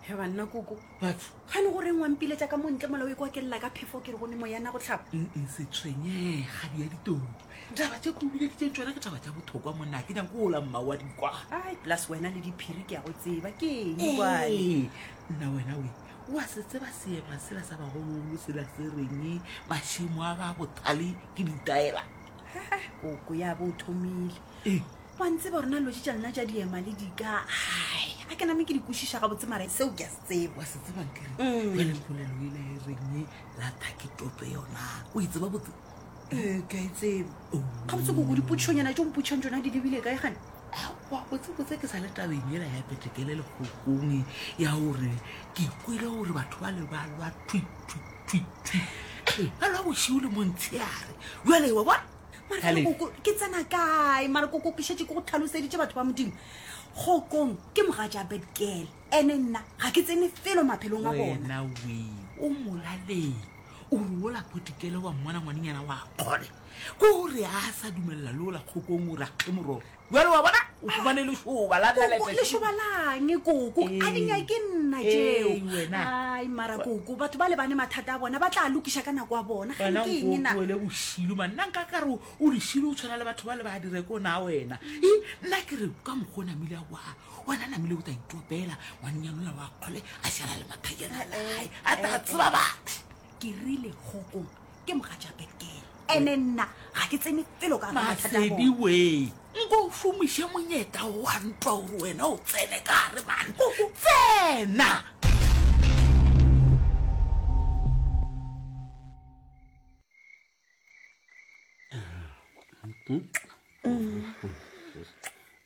he banna koko batho ga ne go reng wa mpiletsa ka montle mola o e kwa ke lela ka phefo ke re go ne moyana go tlhapa ee setshwenyega di ya ditoro taba tse kobile di tsentšona ke taba tsa bothokwa monna ke nyako ola mma wa dikwa ai plus wena le diphiri ke ya go tseba ke eng ee nna wena we wa se tseba seema sela sa bagologolo sela se reng mašimo a ba bothale ke ditaela koko ya bo o thomile ee wa ntseba rona loje tša lena tša diema le dika hai a ke name ke di kwešiša gabotse mara seo ke a se tseba wa se tsebang kere Mm. jale mpolelo e le e reng e lata ke toto yona o e tseba botse ee ke a e tseba Oh. gabotse koko dipotšhonyana tšo mpotšhang tsona di lebile kae gane aowa botsebotse ke sa le tabeng ela ya petekele lekgokong e, ya gore ke kwele gore batho ba le ba lwa thwithwithwithwi ba lwa bošio le montshegare jale wa bona mara Ka lefe? koko ke tsena kae mara koko ke šetse ke go tlhaloseditše batho ba modimo kgokong ke moga ja betkele ene nna ga ke tsene felo maphelong a bona wena we o molaleng o re ola potikele wa mmona ngwanenyana wa kgole ko gore a sa dumelela le ola kgokong o re a kge mororo Bjale wa bona o fumane lešoba la Koko, nalete. lešoba lang koko a di Ee. nyake nna Ee, tšeo wena. ai mara koko batho ba lebane mathata a bona ba tla lokiša ka nako a bona ga wena nke eng nko na tloele bošilu man nna nka kare o- o lešilo o tshwana le batho ba le ba dire ko na wena e nna ke re ka mokgwa o namile a wa wena namile o tla itopela ngwanyanola wa kgole a šala le mathajana a legae a tla tseba batho ke rile kgokong ke moga ja betkele ene nna ga ke tsene pelo ka masedi we nko o šomiše monyeta wa ntwa gore wena o tsene ka gare mane tsena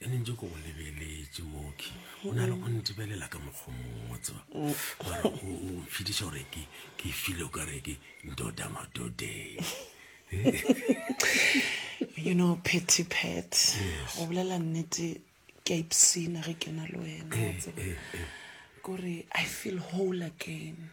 e ne ntse ko go lebeletse moki o na le go ntebelela ka mokgwa mongwe tseba gore o mfitiša gore ke ke file o ka re ke ndoda madodeng you know petty pet go bolela nnete ke a ipsina ge ke na le wena eh, eh, eh. kore i feel whole again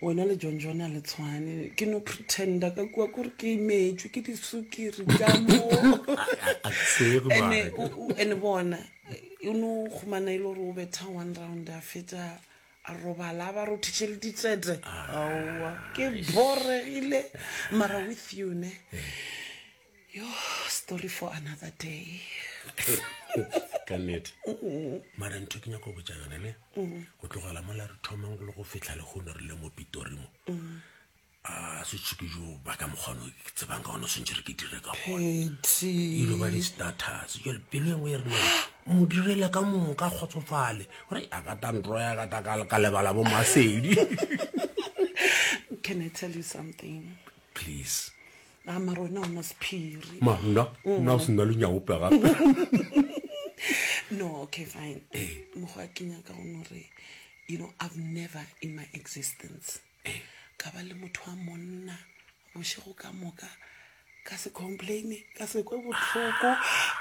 wena le john john a le tshwane ke no pretenda ka kua kore ke imetšwe ke disukiri ka moene bona o ne o kgomana e le gore o betha one round a fetsa a robala a ba rothiše le ditsete aowa ke boregile mara with you ne eh. Yo, story for another day. ka nnete mara ntho ke nyako botsa yone ne go tlogela mola re thomang go le go fitlha le gone re le mo pitori mo a setsho ke jo ba ka mokgwano ke tsebang ka gone swantse re ke dire ka goneilo ba di-status jale pelo engwe e rena mo direle ka mong ka kgotsofale gore a ka tantro ya kata ka lebala bo masedi can i tell you something please a mara wena o na sephiri ma nna nna o se nna lenyaope gape no okay fine mokgwa a kenya ka gone gore you know i've never in my existence ka ba le motho wa monna bošego ka moka ka se complaine ka se kwe botlhoko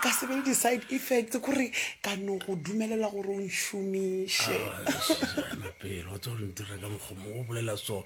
ka se be le di-side effects kore ka no go dumelela gore o nšomiše Ah, Suzana, pele wa tsore ntira ka mokgomo o bolela so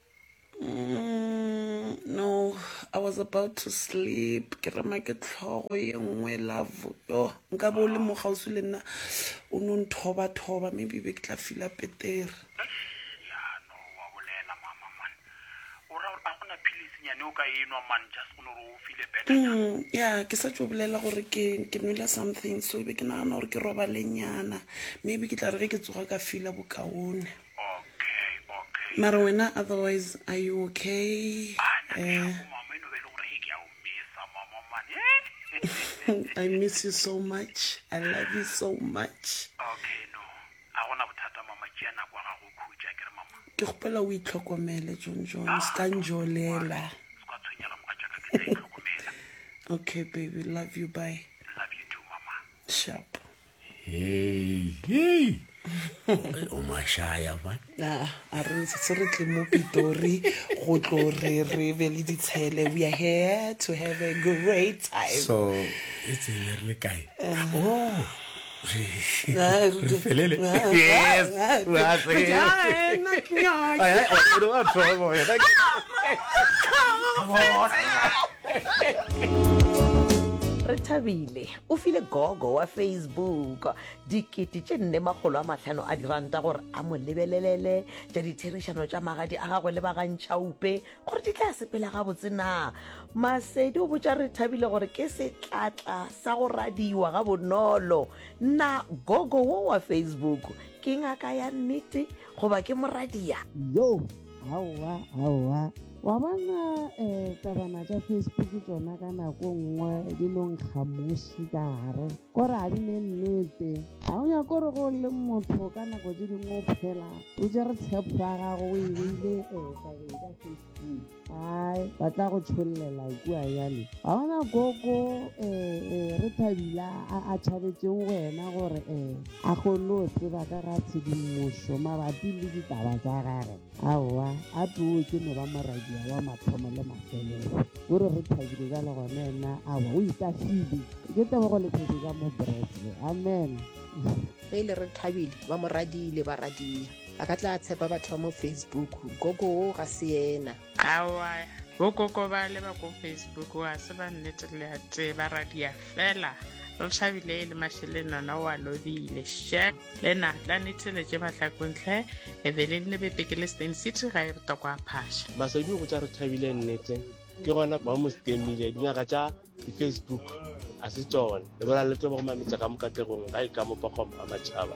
Mm, no, I was about to sleep. Ke rema ke tlhogo ye nngwe love. Yo, nka bo le mo gausi le nna. O no nthoba thoba, maybe be ke tla fila petere. Ya no wa bolela mama man. O ra gore a gona philisi nyane o ka enwa man just go no re o file better. Mm, ya, ke sa tšo bolela gore ke ke nwele something so be ke nagana gore ke robalenyana. Maybe ke tla re ge ke tsoga ka fila bokaone. Mara wena otherwise are you okay? Eh. I miss you so much. I love you so much. Ke kgopela o itlhokomele John John, se ka njolela. Okay baby, love you, bye. Sharp. hei o mashaya ba ah, a re se re tle mo pitori go tlo re re be le ditshele we are here to have a great time so e tsene re le kae eh. oh felele re thabile O file gogo wa Facebook dikete tše nne makgolo a mahlano a diranta gore a mo lebelelele tša ditherišano tša magadi a gagwe le bagantšhaupe gore di tla sepela gabotse na. Masedi o botša Rethabile gore ke setlatla sa go radiwa ga bonolo. Na gogo wo wa Facebook ke ngaka ya nnete goba ke moradia? Yo! aowa aowa wa bona um tabana tša facebook tsona ka nako nngwe di no nkgamoši ka gare kore ga di ne nnete ga o nyako gore go le motho ka nako tse dingwe o phela o jere tshepo ya gago o e beile um tabeng ka facebook ai ba tla go tšholelela kua jale ga ona koko um re thabile a tšhabetseng wena gore um A kgonne go tseba ka ga tshedimošo mabapi le ditaba tša gagwe? Aowa, a too ke no ba moradia wa mathomo le mafelelo. O re re thabile bjalo gona yena? Aowa, o ikahlile. Ke tebogo le phefo tša Mopresidne. Amen. Ge e le re thabile, ba moradii le baradia ba ka tla tshepa batho ba mo Facebook. Gogo wo ga se yena. Aowa, bogogo bale ba ko Facebook ga se ba nnete le gatee. Baradia fela re thabile e le mašele nona o a lobile she le na tla ne theletše bahlakontlhe ebeleng le bepeke le stain city ga e re toko a phasha masedi go tša re thabile nnete ke gona ba mo stemile dingaka tša di-facebook a se tsone le bona le tlo ba go mametsa ka mokategong ga e ka mopakgwamo a matšhaba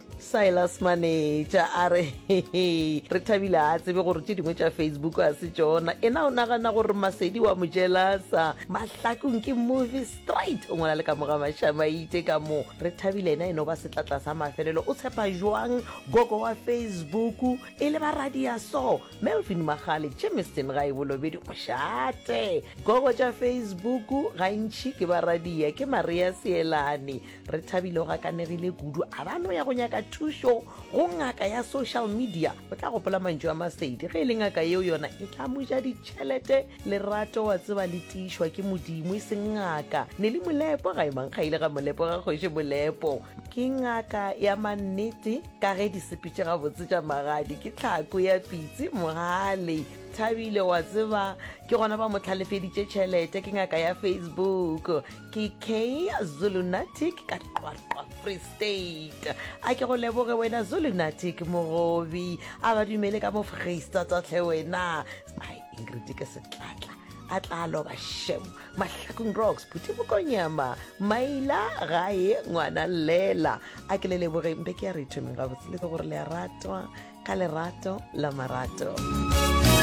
silas maneja a re re thabile a tsebe gore tše dingwe tša facebook a se tsona ena o nagana gore masedi wa mojelasa mahlakong ke movie straight o ngwana le ka moga mašamaite ka mo re thabile ena eno ba setlatla sa mafelelo o tshepa jwang gogo wa facebook e le ba radia so melvin magale jameson ga e bolobedi mošate gogo tša facebook gantšhi ke ba radia ke maria seelane re thabile o gakanegile kudu a ba no ya go nyaka thušo go ngaka ya social media o tla gopola mantšu a masedi ge e le ngaka yeo yona e tla mo ja ditšhelete lerato wa tseba le tiišwa ke modimo e seng ngaka ne le molepo ga e mankga ile ga molepo ga kgoši molepo ke ngaka ya mannete ka ge di sepetše gabotse tša magadi ke tlhako ya pitse mogale thabile wa tseba ke gona ba mo tlhalefeditše tšhelete ke ngaka ya facebook ke kay zulunatic ka qwaqwa free state a ke go leboge wena zulunatic mogobi a ba dumele ka mo freistatatlhe wena ai ingrid ke setlatla a tla loba shem mahlakong rocks phuti mokonyama maila gae ngwana lela a ke le lebogeng be ke ya re ithomeng gabotse le ke gore le a ratwa ka lerato la marato